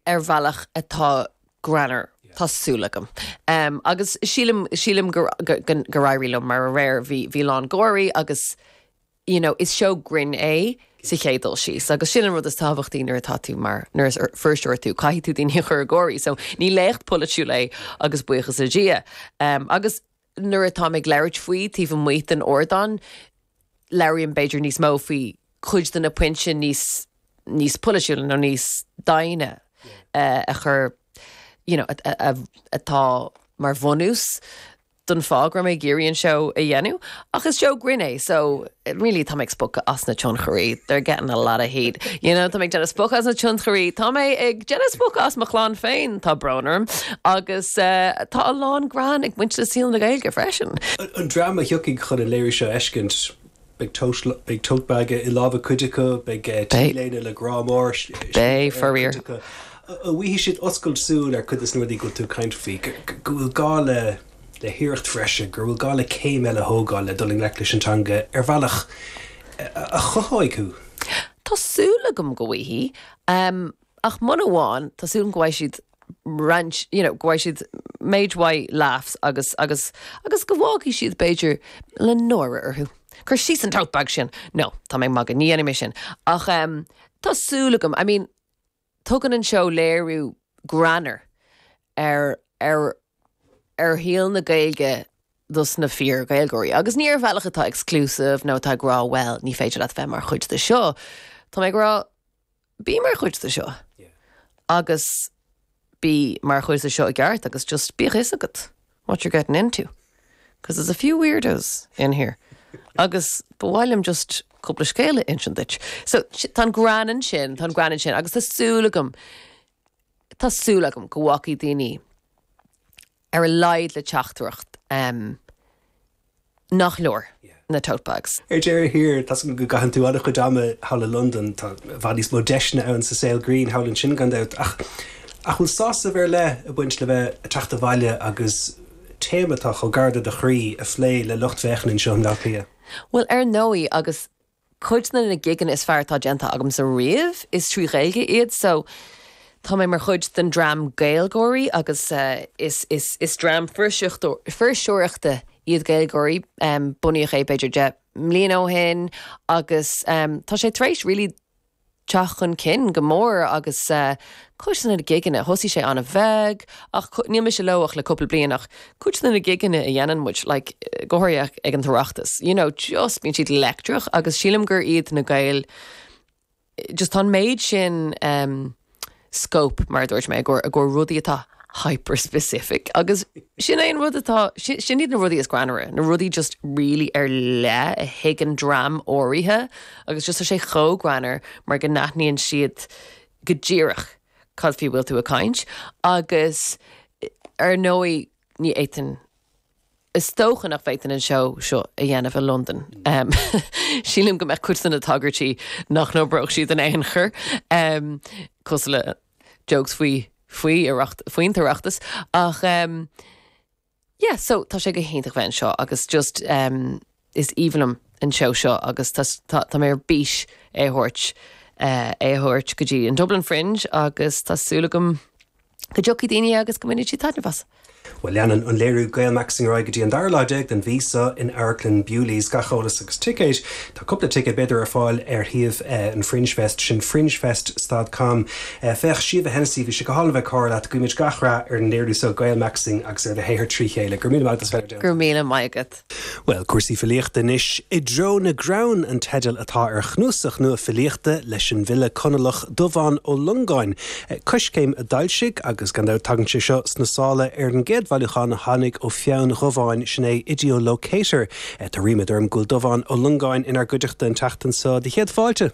ar bhealach atá greannmhar, tá súil agam. Agus sílim, sílim gur éirigh liom, mar aréir bhí, bhí a lán gáirí agus you know is seó grinn é sa chéad dul síos agus sin an rud is tábhachtaí nuair atá tú mar, nuair is fuirseoir tú, caithfidh tú daoine a chur ag gáirí so ní léacht pholaitiúil é agus buíochas le Dia. Agus. nuair atá mé ag labhairt faoi taobh amuigh den ardán, labhraím b'fhéidir níos mó faoi chuid de na pointí níos níos polaitiúla nó níos doimhne a chur you know atá mar bhunús don fáth go raibh mé ag iarraidh an seó a dhéanamh ach is seó grinn é so really tá mé ag spochadh as na tionchairí, they're getting a lot of heat, you know, tá mé ag déanamh spochta as na tionchairí, tá mé ag déanamh spochta as mo chlann féin, tá brón orm agus eh, tá a lán grinn ag baint le saol na Gaeilge freisin. An dream a thiocfaidh chun an léiriú seo a fheiscint, beidh tote, beidh tote bag i lámha cuid acu, beidh T-léine le grá mór scríofa ar a gcuid acu, an bhfaighidh siad oscailt súl ar cuid de sna rudaí go bhfuil tú ag caint faoi, go bhfuil gá le. le hiarracht bhreise, go bhfuil gá le céim eile a thógáil le dul i ngleic leis an teanga ar bhealach a chothóidh thú. Tá súil agam go bhfaighidh. Ach mura bhfaigheann, tá súil agam go bhfaighidh siad roinnt, you know, go bhfaighidh siad méid mhaith laughs agus, agus, agus go bhfágfaidh siad, b'fhéidir, le náire orthu. Cuir síos an tote bag sin! No, tá mé ag magadh, ní dhéanfaidh mé sin. Ach tá súil agam, I mean. Tugann an seó léiriú greannmhar ar ar ar shaol na Gaeilge dos na fíor-Ghaeilgeoirí agus ní ar bhealach atá exclusive nó atá ag rá bhuel ní féidir leat bheith mar chuid de seo. Tá mé ag rá bí mar chuid de seo agus bí mar chuid de seo i gceart agus just bíodh fhios agat. what you're getting into because there's a few weirdos in here agus ba mhaith liom just cúpla scéal a insint duit. So tá an greann ansin, tá an greann ansin agus tá súil agam, tá súil agam go bhfágfaidh daoine ar a laghad le teachtaireacht. nach leor na tote bags. Ar deireadh thiar, tá 's agam go gcaitheann tú an-chuid ama thall i Londain. Tá i bhfad níos mó deiseanna ann sa saol grinn thall ansin, gan dabht. Ach an bhfuil sásamh ar leith ag baint le bheith ag teacht abhaile agus téama atá chomh gar do do chroí a phlé le lucht féachana anseo i mBleá Cliath? Bhuel, ar ndóigh agus. Cuid de na gigeanna is fearr atá déanta agamsa riamh, is trí Ghaeilge iad so tá mé mar chuid den dream GaelGáirí agus is dream fuirseoireachta iad GaelGáirí. Bunaíodh é b'fhéidir deich mbliana ó shin agus tá sé tar éis really, teacht chun cinn go mór agus cuid de na gigeanna, thosaigh sé an-bheag ach níl mise leo ach le cúpla bliain ach cuid de na gigeanna a dhéanann muid, like go háirithe ag an tOireachtas, you know just bíonn siad leictreach agus sílim gur iad na Gaeil just tá an méid sin eh. scóip, mar a dúirt mé, i gcomhair rudaí atá hyper-specific agus sin é an rud atá, sin iad na rudaí is greannmhaire, na rudaí just really ar leith a thuigeann dream áirithe agus just tá sé chomh greannmhar mar go n-aithníonn siad go díreach cad faoi a bhfuil tú ag caint agus ar ndóigh ní fhéadfainn Is dócha nach bhféadfainn an seó seo a dhéanamh i Londain. Sílim go mbeadh cuid de na tagairtí nach n-oibreodh siad in aon chor, em, cosúil le jokes faoi faoi Oireacht, faoin tOireachtas. Ach, yeah, so, tá sé go hiontach bheith anseo agus just, Is aoibhinn liom an seó seo agus tá mé ar bís é a thabhairt é a thabhairt go dtí an Dublin Fringe agus tá súil agam go dtiocfaidh daoine agus go mbainfidh siad taitneamh as. Bhuel, leanann an léiriú Gaelmaxxing ar aghaidh go dtí an dara lá déag den mhí seo in Amharclann Bewley's. Gach eolas agus ticéid, tá cúpla ticéad b'fhéidir ar fáil ar shuíomh an Fringe Fest, sin fringefest stad com. Féach, Síomha Hennessy, bhí sé go hálainn bheith ag comhrá leat, guímid gach rath ar an léiriú seo Gaelmaxxing agus ar do shaothar trí chéile. Go raibh míle maith agat as bheith ar Go raibh míle maith agat. Bhuel, cúrsaí filíochta anois, I dTreo na gCrann an teideal atá ar chnuasach nua filíochta leis an bhfile Conallach Dubhán Ó Longáin, Coiscéim a d'fhoilsigh, agus gan dabht tagann sé seo sna sála ar an gcéad bhailiúchán a tháinig ó pheann Dhubháin, sin é Ideo-Locator. Tá ríméad orm go bhfuil Dubhán Ó Longáin inár gcuideachta an tseachtain seo. Do chéad fáilte!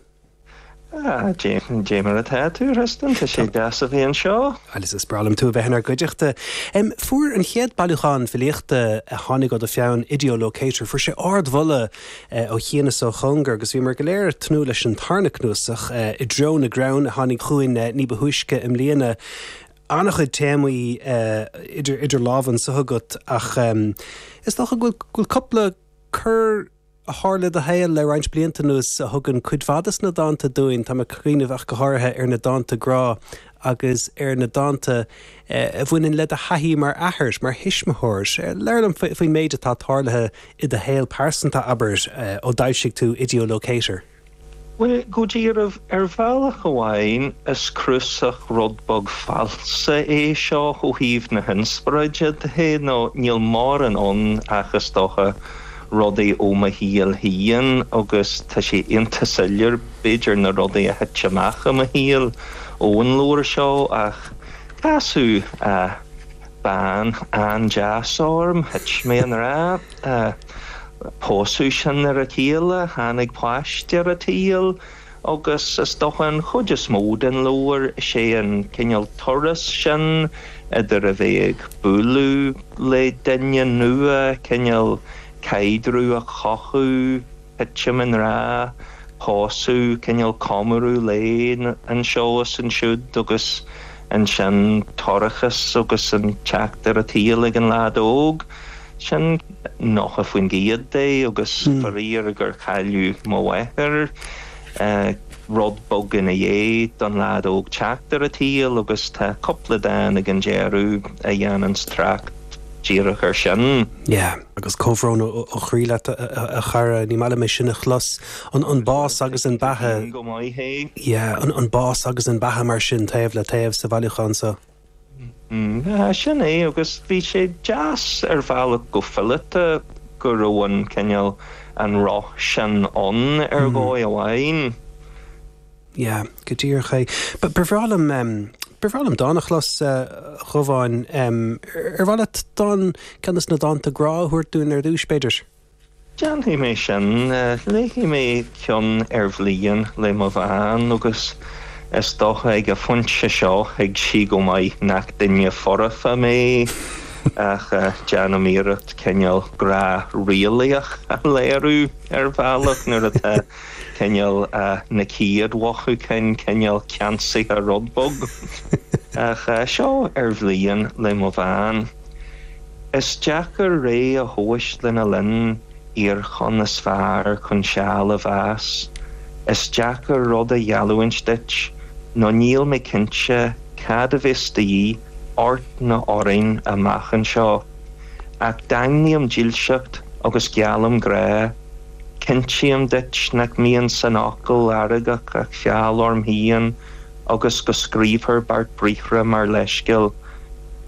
Dé mar atá tú, a Thristan, tá sé deas a bheith anseo. Is breá liom tú a bheith inár gcuideachta. Fuair an chéad bailiúchán filíochta a tháinig ó do pheann, Ideo Locator, fuair sé ard-mholadh ó chian is ó chóngar agus bhíomar go léir ag tnúth leis an tarna cnuasach, I dTreo na gCrann, a tháinig chugainn ní ba thúisce i mbliana. An-chuid téamaí idir lámha anseo agat ach is dócha go bhfuil cúpla cor, a tharla i do shaol le roinnt blianta anuas a thugann cuid mhaith de na dánta dúinn. Táim ag cuimhneamh ach go háirithe ar na dánta grá agus ar na dánta a bhaineann le do thaithí mar athair, mar thuismitheoir. Labhair liom faoin méid atá tarlaithe i do shaol pearsanta, abair, ó d'fhoilsigh tú Ideolocator. Bhuel, go dearbh, ar bhealach amháin is cnuasach rud beag falsa é seo ó thaobh na hinspioráide de nó níl mórán ann ach, is dócha, rudaí ó mo shaol féin agus tá sé iontach soiléir b'fhéidir na rudaí a thit amach i mo shaol ón leabhar seo ach casadh bean an-deas orm, thit mé i ngrá. Pósadh sinn ar a chéile, tháinig páiste ar an tsaol agus is dócha an chuid is mó den leabhar is é an cineál turas sin idir a bheith ag bualadh le duine nua, cineál caidreamh a chothú, titim i ngrá, pósadh, cineál comóradh lae anseo is ansiúd agus ansin toircheas agus an teacht ar an tsaol ag an leaid óg. Sin 90% de agus faraor gur cailleadh mo mháthair. Rud beag ina dhiaidh don leaid óg teacht ar an tsaol agus tá cúpla dán ag an deireadh a dhéananns trácht díreach ar sin. Yeah. Agus comhbhrón ó chroí leat a chara, ní maith liom é sin a chlos. An bás agus an beatha. Yeah, an bás agus an beatha mar sin taobh le taobh sa bhailiúchán seo. B'shin é agus bhí sé deas ar bhealach go fileata go raibh an cineál, an roth sin ann ar dhóigh amháin. Yeah, go díreach é. Ba bhreá liom, ba bhreá liom dán a chlos, a Dhubháin. Ar mhaith leat dán, ceann de na dánta grá a thabhairt dúinn ar dtúis, b'fhéidir? Déanfaidh mé sin. Léifidh mé ceann ar bhliain le mo bhean agus is dócha ag an phointe seo thuig sí go maith nach duine foirfe mé ach déanaim iarracht cineál grá realaíoch a léiriú ar bhealach nuair atá cineál na chéad mhothúcháin cineál ceansaithe rud beag. Ach seo ar bhliain le mo bhean. Is deacair ré a thomhais lena linn iarchonn is fearr chun seal a mheas. Is deacair rud a gheallúint duit nó níl mé cinnte cad a bheas de dhíth ort nó orainn amach anseo. Ach daingním dílseacht agus geallaim grá. Cinntím duit nach mbíonn san fhocal fheargach ach feall orm féin. agus go scríobhtar beart briathra mar leithscéal,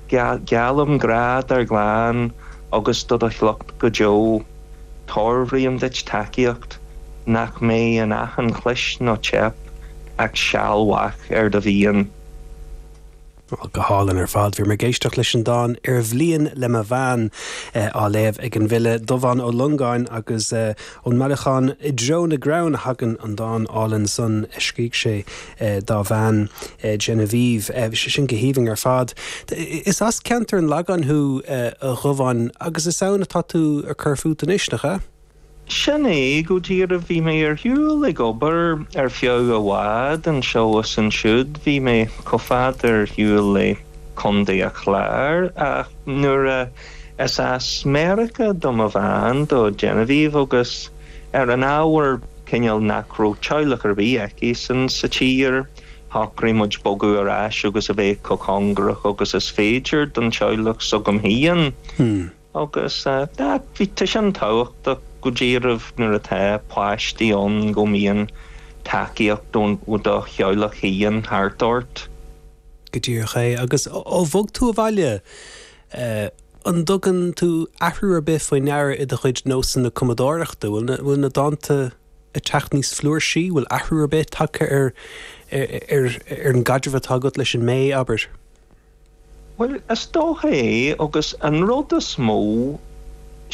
Geallaim grá dár gclann agus do do shliocht go deo. Toirbhrím duit tacaíocht nach mbeidh in achan chlis nó teip ach seal mhaith ar do mhian. Bhuel, go hálainn ar fad. Bhíomar ag éisteacht leis an dán 'Ar Bhliain' le mo bhean, á léamh ag an bhfile Dubhán Ó Longáin, agus ón mbailiúchán I dTreo na gCrann a thagann an dán álainn san a scrígh sé dá bhean, Genevieve. Bhí sé sin go haoibhinn ar fad. Is as ceantar an Lagáin thú, a Dhubháin, agus is ann atá tú ag cur fút anois, nach ea? Sin é go díreach. Bhí mé ar shiúl ag obair ar feadh i bhfad, anseo is ansiúd. Bhí mé chomh fada ar shiúl le Contae a Chláir, ach nuair a is as Meiriceá do mo bhean, do Genevieve, agus ar an ábhar cineál nach raibh teaghlach ar bith aici-san sa tír, shocraigh muid bogadh ar ais agus a bheith chomh cóngarach agus is féidir don teaghlach s'agam féin. Agus bíonn sin tábhachtach go díreach nuair atá páistí ann go mbíonn tacaíocht ó do theaghlach féin thart ort. Go díreach é. Agus ó bhog tú abhaile, an dtugann tú athrú ar bith faoi ndeara i do chuid nósanna cumadóireachta? Bhfuil na dánta ag teacht níos flúirsí? Bhfuil athrú ar bith tagtha ar an gcaidreamh atá agat leis an mbé, abair? Bhuel, is dóiche agus an rud is mó,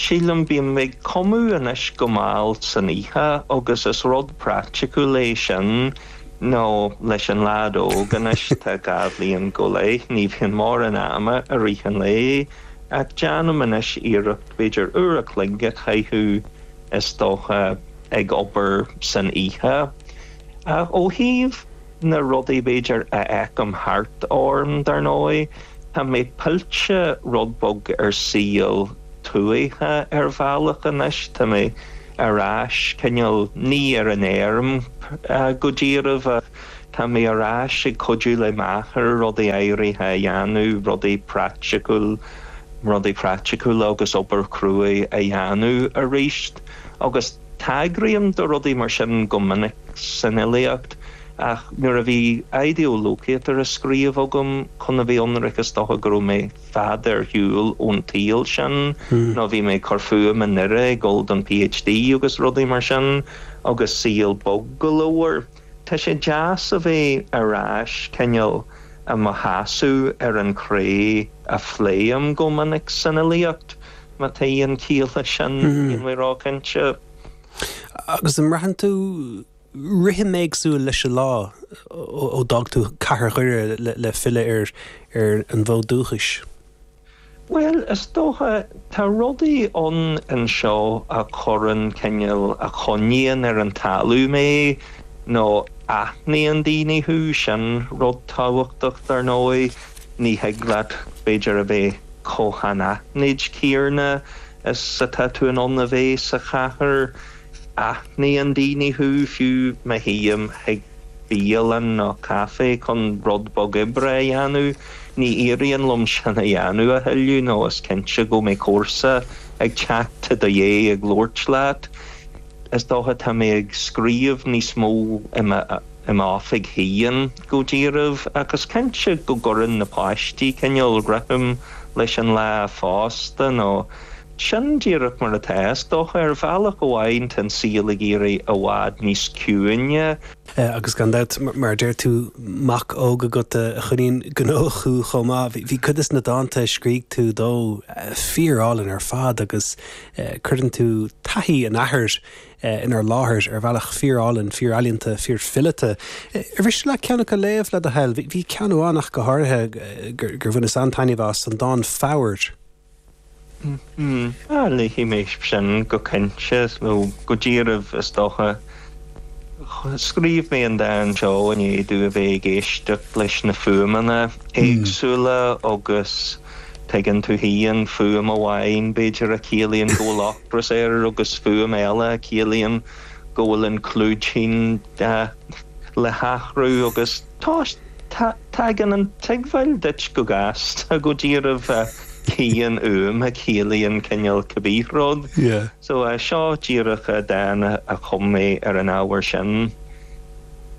sílim, bíonn mé ag cumadh anois go mall san oíche agus is rud praiticiúil é sin nó leis an leaid óg anois, tá dhá bhliain go leith, ní bhíonn mórán ama i rith an lae ach déanaim anois iarracht b'fhéidir uair a chloig a chaitheamh is dóiche ag obair san oíche. Ach ó thaobh. na rudaí b'fhéidir a fheicim thart orm dar ndóigh, tá mé pillte rud beag ar shaol tuaithe ar bhealach anois, tá mé ar ais cineál ní ar an fheirm go díreach ach tá mé ar ais ag cuidiú le m'athair rudaí áirithe a dhéanamh, rudaí praiticiúil, rudaí praiticiúla agus obair chruaidh a dhéanamh arís agus. Tagraím do rudaí mar sin go minic san fhilíocht, ach nuair a bhí Idir Locatar a scríobh agam chun a bheith ionraic is dócha go raibh mé fada ar shiúl ón tsaol sin nó bhí mé ag cur fúim i nDoire ag dul don PhD agus rudaí mar sin agus saol bog go leor. Tá sé deas a bheith ar ais cineál i mo sheasamh ar an chré a phléim go minic san fhilíocht. Má tá aon ciall leis sin, níl mé róchinnte. Agus an mbraitheann tú rithim éagsúil leis an lá ó d'fhág tú cathair Dhoire le filleadh ar an bhfód dúchais? Bhuel, is dóiche, tá rudaí ann anseo a chuireann cineál, a choinníonn ar an talamh mé nó aithníonn daoine thú, sin rud tábhachtach, dar ndóigh. Ní thig leat b'fhéidir a bheith chomh hanaithnid céanna is atá tú in ann a bheith sa chathair. Aithníonn daoine thú, fiú má théim chuig bialann nó caife chun rud beag oibre a dhéanamh. Ní éiríonn liom sin a dhéanamh, a thuilleadh, nó is cinnte go mbeidh comharsa ag teacht i do dhéidh ag labhairt leat. Is dócha tá mé ag scríobh níos mó i mo. i m'oifig féin go díreach agus cinnte go gcuireann na páistí cineál rithim leis an lá fosta nó sin díreach mar atá, is dócha. Ar bhealach amháin tá an saol ag éirí i bhfad níos ciúine. Agus gan dabht, mar a deir tú, mac óg agat a choinníonn gnóthach thú chomh maith. Bhí cuid des na dánta a scrígh tú dó fíor-álainn ar fad agus cuireann tú taithí an athar inár láthair ar bhealach fíorálainn, fíorealaíonta, fíorfileata. Ar mhiste leat ceann acu a léamh, le do thoil? Bhí ceann amháin ach go háirithe gur bhaineas an-taitneamh as, an dán 'Foghair' Léifidh mé sin go cinnte, nó go díreach is dócha. Scríobh mé an dán seo i ndiaidh domh a bheith ag éisteacht leis na fuaimeanna éagsúla agus tuigeann tú féin, fuaim amháin b'fhéidir a chiallaíonn go bhfuil ras air agus fuaim eile a chiallaíonn go bhfuil an clúidín le hathrú agus tagann an tuigbheáil duit go gasta go díreach cén fhuaim a chiallaíonn cineál cibé rud. So seo díreach dán a chum mé ar an ábhar sin.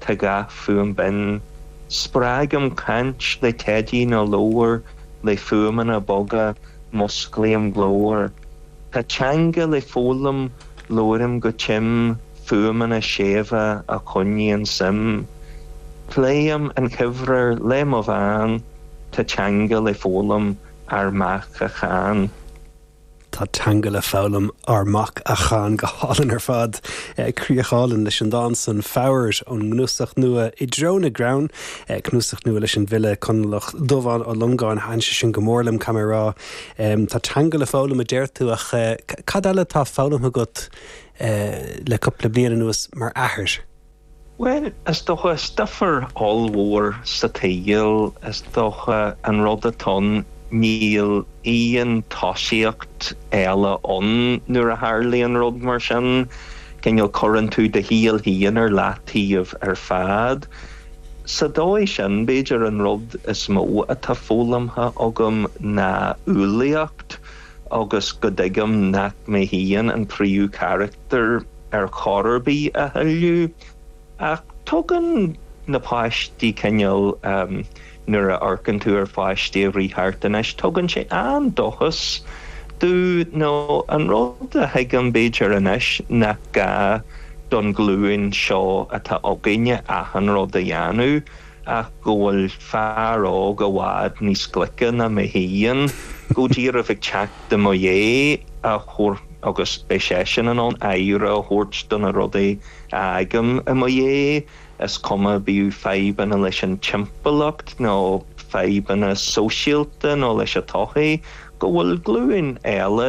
Tá gach fuaim binn. Spreagaim caint le teidí nó leabhar le fuaimeanna boga, musclaím glór. Tá teanga le foghlaim, labhraím go tim fuaimeanna séimhe a choinníonn suim. Pléim an chuibhreann le mo bhean, tá teanga le foghlaim ár mac a chan. Tá teanga le foghlaim, ár mac, a chan go hálainn ar fad. Críoch álainn leis an dán san, Foghair, ón gcnuasach nua I dTreo na gCrann, cnuasach nua leis an bhfile Conallach Dubhán Ó Longáin. Thaithin sé sin go mór liom, caithfidh mé a rá. Tá teanga le foghlaim a deir tú ach cad eile atá foghlamtha agat le cúpla bliain anuas mar athair? Bhuel, is dócha, stuifear ollmhór sa tsaol, is dócha, an rud atá ann, níl aon tosaíocht eile ann nuair a tharlaíonn rud mar sin, cineál cuireann tú do shaol féin ar leataobh ar fad. Sa dóigh sin, b'fhéidir, an rud is mó atá foghlamtha agam ná umhlaíocht. agus go dtuigim nach mé féin an tríú carachtar ar chor ar bith a thuilleadh, ach tugann na páistí cineál, nuair a amharcann tú ar pháistí ag rith thart anois, tugann sé an-dóchas domh, nó an rud a thuigim b'fhéidir anois nach gá don ghlúin seo atá againne achan rud a dhéanamh, ach go bhfuil fear óg i bhfad níos glice ná mé féin go díreach ag teacht i mo dhiaidh agus beidh seisean in ann aire a thabhairt do na rudaí a fhágaim i mo dhiaidh, is cuma bíodh fadhbanna leis an timpeallacht nó fadhbanna sóisialta nó leis an tsochaí, go bhfuil glúin eile